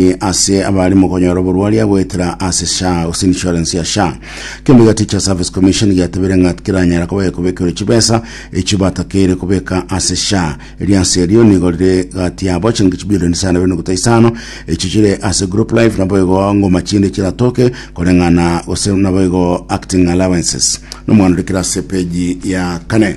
e, ase abare mokonyora oborwari agoetera ase SHA gose insurance ya SHA. Ekeombe gia Teacher Service Commission giatebire ng'a tikeranyara kobe kobekerwa chibesa echio batakeire kobeka ase SHA. Erianse erio nigo rire gati yabo chiringi chibilioni isano na ibere nogota isano echio chire ase group life naboigo ngoma chinde chiratoke koreng'ana gose naboigo acting allowances. Nomwana orikire ase peji ya kane.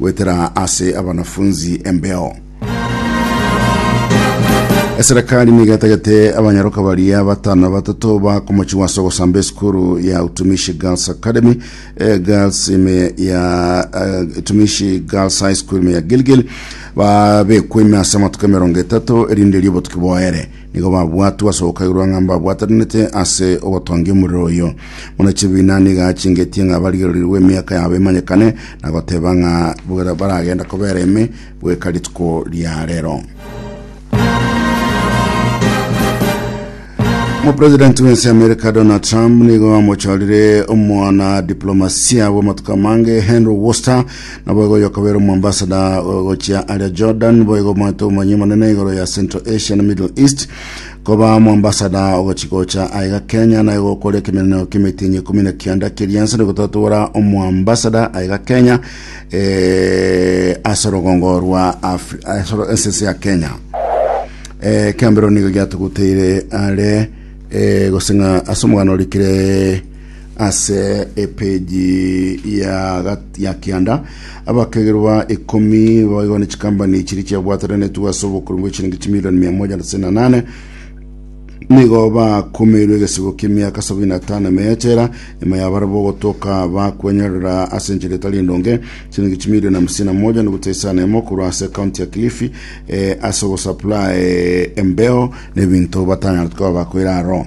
Goetera ase abanafunzi embeo. Eserekari nigo etagete abanyaroka baria batano na batato bakomochigwa ase ogosamba esukuru ya Utumishi Girls Academy, eh, Girls ime ya eh, Utumishi Girls High School ime ya Gilgil babekwa ime ase amatuko emerongo etato erinde erio obotuki boere Nigo babwatwe ase ogokairwa ng'a mbabwatarenete ase ogotongia omorero oyo. Buna chibiina nigo achingetie ng'a barigererirwe emiaka yabo emanyekane, na goteba ng'a bwera- baragenda kobera ime goika rituko ria rero. Omopresidenti bw'ense y'Amerika Donald Trump nigo amochorire omwana diplomasia bw'amatuko amange Henry Worcester Naboigo oyokobera omoambasada gochia aria Jordan, boigo omoeto omonyia omonene igoro ya Central Asia na Middle East, koba omoambasada ogochigocha aiga Kenya naye gokoria ekemenenero k'emetienyi ekumi na kianda keria nse nogototobora omoambasada aiga Kenya eh, ase orogongo rwa Afri- ase oro- ase ense ya Kenya eh, kiambero nigo giatuguteire are eh, goseng'a ase omogano orikire ase epeji ya gat- ya kianda abakegerwa ikomi babaigwa ne chikambani chiri chiabwataranetwe ase obokori bwe chiringi chimilioni mia moja na tisini na nane nigo bakumirwe egesibo ki'emiaka sabini na tano ime yechera ime yabare bogotoka bakwenyorera ase enchera etari endonge chiringi chimilioni hamsini na moja nuguta isano emo korwa ase kaunti ya kilifi eh, ase ogosupply embeo na ebinto batanyarete koba bakoira aro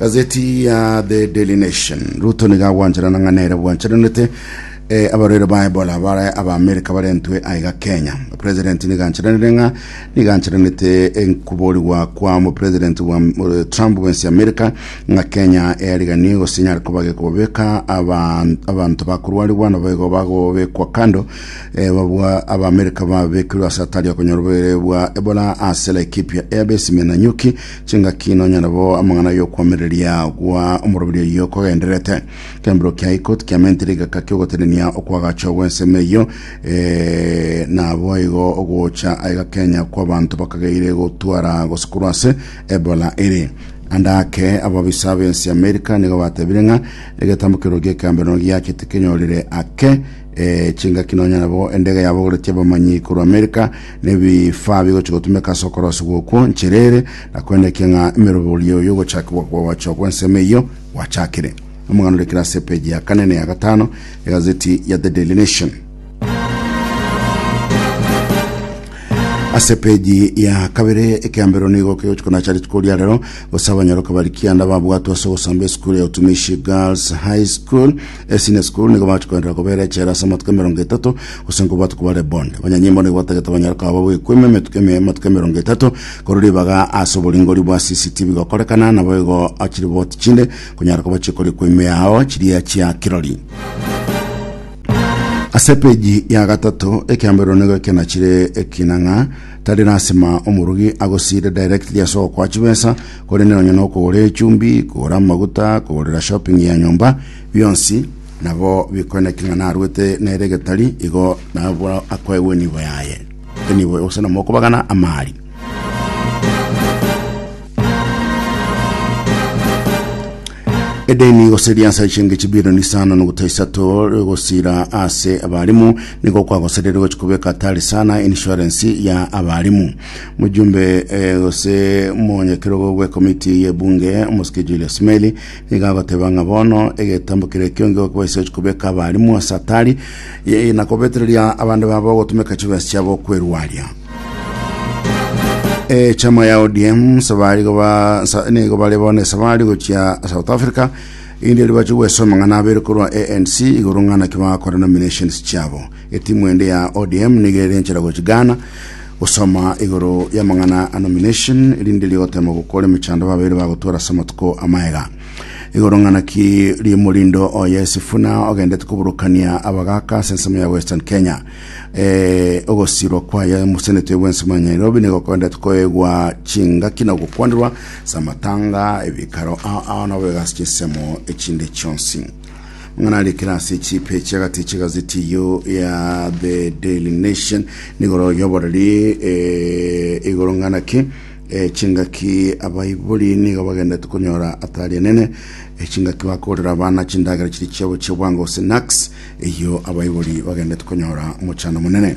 gazeti ya the daily nation ruto niga agwancherana ng'a nere bwancheranete eh, abarwaire ba ebola bare abaamerika barentwe aiga kenya president nigancheranire ng'a nigancheranete enkuborigwa kwa mupresident bwa eh, trump bwensi amerika ng'a kenya eyariganie gose nyare kuba gekobabeka aban- abanto bakorwarigwa nabo igo bagobekwa kando eh, babua abaamerika babekirwe ase atari okonyora oborwaire bwa ebola ase laikipia airbase menanyuki Chingaki nonyore bo amang'ana y'okoamereria gwa omorobiri oyio kogenderete. Kembiro kia iko tikiamentire igaka ki'ogotenenia okwagachwa gw'ensemo eyio, ee, naboigo ogocha aigakenya kw'abanto bakageire gotwara gose korwa ase Ebola ere. Ande ake, ababisa b'ense y'Amerika nigo batebire ng'a egetambokero gi'ekeamberano giache tikenyorire ake E, chingaki nonya nabo endege yabogoretie abamanyi korwa Amerika nebifaa bigochi gotumeka ase okorosigwa okwo nchera ere, na koendekia ng'a emeroborio y'ogochakigwa kw'ogoachwa gw'ensemo eyio gwachakire. Omogano orekire ase epeji ya kane na ya gatano egazeti ya The Daily Nation. ase peji ya kabere ekeambero nigo kegochi konacha rituko ria rero gose abanyaroka bari kianda babwatwa ase ogosamba esukuru ya utumishi girls high school Ase Nescuru nigo bagacha koenderera kobeera echela ase amatuko emerongo etato, gose nkobwate koba rebond. Abanyanyimbo nigo batagete banyare koba bagoekwema emetuko eme amatuko emerongo etato, korwa ribaga ase oboringori bwa CCTV gokorekana, nabo igo chiriboti chinde konyara koba chikori kwemea ao chiria chia kirori. Ase epeji ya gatato, ekeamberero nigo ekena chire ekinang'a, tari lasima omorogi agosiire directly ase ogokwa chibesa, Korende nonya nokogora echumbi, kogora amaguta, kogorera shopping ya nyomba, bionsi nabo bikoeneka ng'a narwete nere egetari, igo nabwo akoegwa enibo yaye, enibo gose nomokobagana amaari. Edeni gose riansa echenge chibilioni isano nogota isato gosira ase abalimu nigo kwagoserire gochi kobeka atari sana insurance ya abalimu Mojumbe eh, gose monyakerogo bw'ekomiti y'ebunge omosike Julius Meli nigo agoteba ng'a bono egetambo kere ekionge okobaisechi kobeka abarimu ase atari ye- na kobetereria abande babo ogotumeka chibesa chiabo kwerwaria e chama ya ODM sabari goba sa, nigo bare bono esabari gochia South Africa indi ribache gwesoma ng'ana abere korwa ANC igoro ng'ana ki bagakora nominations chiabo Etimu ende ya ODM nigo ere enchera gochia Ghana gosoma igoro y'amang'ana a nomination erinde eria gotema gokora emechando babeire bagotwara ase amatuko amaega. Igoro ng'ana ki rimorindo oye Sifuna ogendete koburukania abagaka ase ensemo ya Western Kenya. Eh, ogosirwa kwaye mosenete bw'ensemo ya Nairobi nigo okoendete koegwa chingaki na gokwanirwa ase amatanga, ebikaro ao ao nabo egasi chinsemo echinde chionsi. Mang'ana aria ekero ase echipe chi'agati chi'egazeti eyio ya The Daily Nation nigoro yoboreri eh, igoro ng'ana ki eh, chingaki abaibori nigo bagendete konyora atari enene eh, chingaki bakorera abana chindagera chiri chiabo chi'obwango snacks eyio abaibori bagendete konyora mochano monene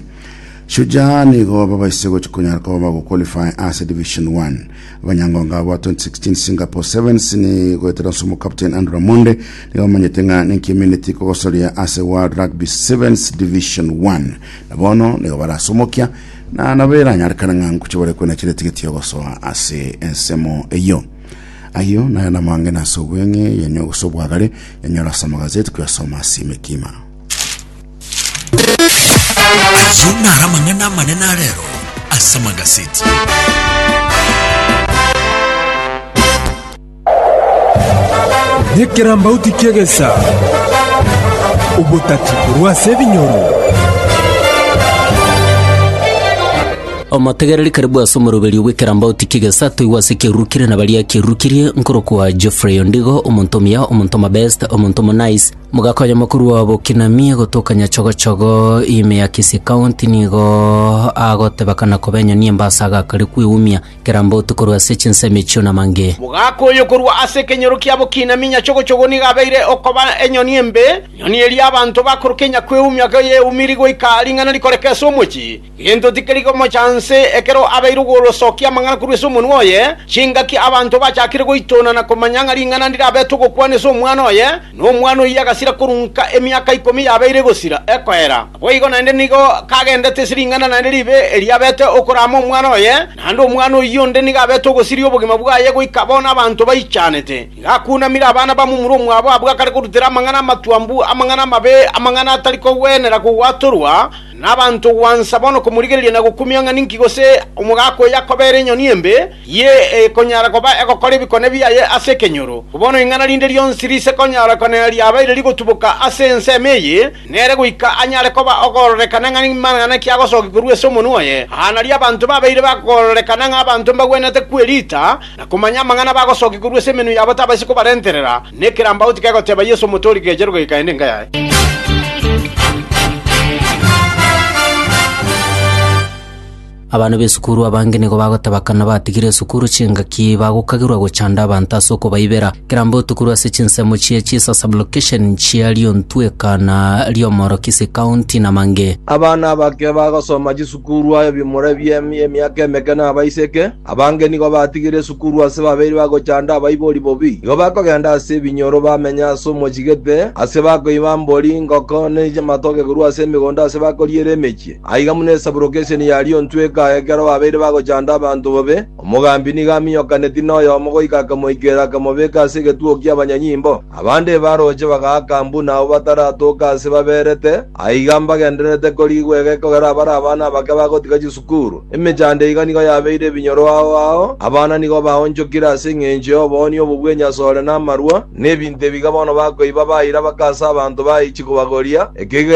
Shujaa nigo babaise gochi konyara koba bagoqualify ase Division 1 abanyangonga aba 2016 Singapore Sevens ni goetera nse omokapteni Andrew Ramonde nigo omanyete ng'a nenki emineti kogosoria ase World Rugby Sevens Division 1 na bono nigo barasomokia na nabo eranyarekana ng'a ngocha bare kwena chire tigeti yogosoa ase ensemo eyio ayio nayo namang'ina ase obweng'e yanyo gose obwagare yanyora ase amagazeti kuyasoma ase emekima Ayio naro amang'ana amanene a rero ase amagaseti. Nekerambauti ki'egesa, obotati korwa ase ebinyoro. omotegereri karibu ase omoroberio bw'ekerambauti ki'egesa toigwe ase ekiarurukire na baria akiarurukirie nkorokwa geoffrey ondigo omonto omuya omonto omabest omonto omonice Mogakonya mokuru obo Kinamie gotoka nyachogochogo ime ya Kisii County nigo agoteba kana kobenyo niembasa agakare kweumia kera mbotu korwa ase chinsemo echio namange. Mogakoyo korwa ase ekenyoro kiabo Kinamie nyachogochogo nigo abeire okoba enyoni embe, nyoni eria abanto bakorokia nyakweumia goyeumiri goika ring'ana rikoreka ase omochie. Gento tikeri komocha nse ekero abeire ogw'orosokia amang'ana korwa ase omonwa oye, chingaki abanto bachakire goitona na komanya ng'a ring'ana ndirabete ogokwana ase omwana oye, na omwana oyio agasira korunka emiaka ikomi yabeire egosira ekoera. Naboigo naende nigo kagendete ase ring'ana naende ribe erio abete okoraama omwana oye, naende omwana oyio onde nigo abete ogosiria obogima bwaye goika bono abanto baichanete. Nigo akunamire abana bamomura omwabo abwo akare korutera amang'ana amatwambu, amang'ana amabe, amang'ana atari kogwenera kogwatorwa, Nabanto gwansa bono komorigereria na gokumia ng'a ninki gose omogaka oyo akobeera enyoni embe, eye ekonyara koba egokora ebikone biaye ase ekenyoro. Bono ing'ana rinde rionsi riise konyara konena riabeire rigutuboka ase ensemo eye, nere goika anyare koba ogororekana ng'a nimang'ana ki agosokia korwa ase omonwa oye. Aa nario abanto babeire bagororekana ng'a abanto mbagwenerete kwerita na komanya amang'ana bagosokia korwa ase emenwa yabo tabaisi kobarenterera, Nekerambauti kegoteba Yesu omotoori kegerwa gekaende enka yaye. Abana b'esukuru abange nigo bagoteba kana batigire esukuru chingaki bagokagirwa gochanda abanto ase okobaibera kerambauti korwa ase chinsemo chie Jesus Ablocation chia Liontweka na Liomoro Kisii County na Mange. Abana abake bagosoma chisukuru aye bimura ebiemia emiaka emeke nabaiseke. Abange nigo batigire esukuru ase babeire bagochanda abaibori bobi. Nigo bakogenda ase ebinyoro bamenye ase omochigete, ase bakoiba mbori, ngoko, ne amatoke korwa ase emegondo ase bakoriera emechie. Aiga buna esaburoka eseni yariontweka ekero babeire bagochanda abanto bobe, omogambi nigo aminyokaneti noyomo goika akamoikera akamobeka ase egetugo ki'abanyanyimbo. Abande ebarooche bagaaka buna abwo bataratoka ase baberete, aiga mbagendererete korigwa egekogera abare abana abake bagotiga chisukuru. Sikuru, emechando iga nigo yabeire ebinyoro ao ao, abana nigo baonchokire ase engencho y'oboonio obo bw'enyase ore namarwa, na ebinto ebiga bono bakoiba baira baka ase abanto baichi kobagoria, ekeiga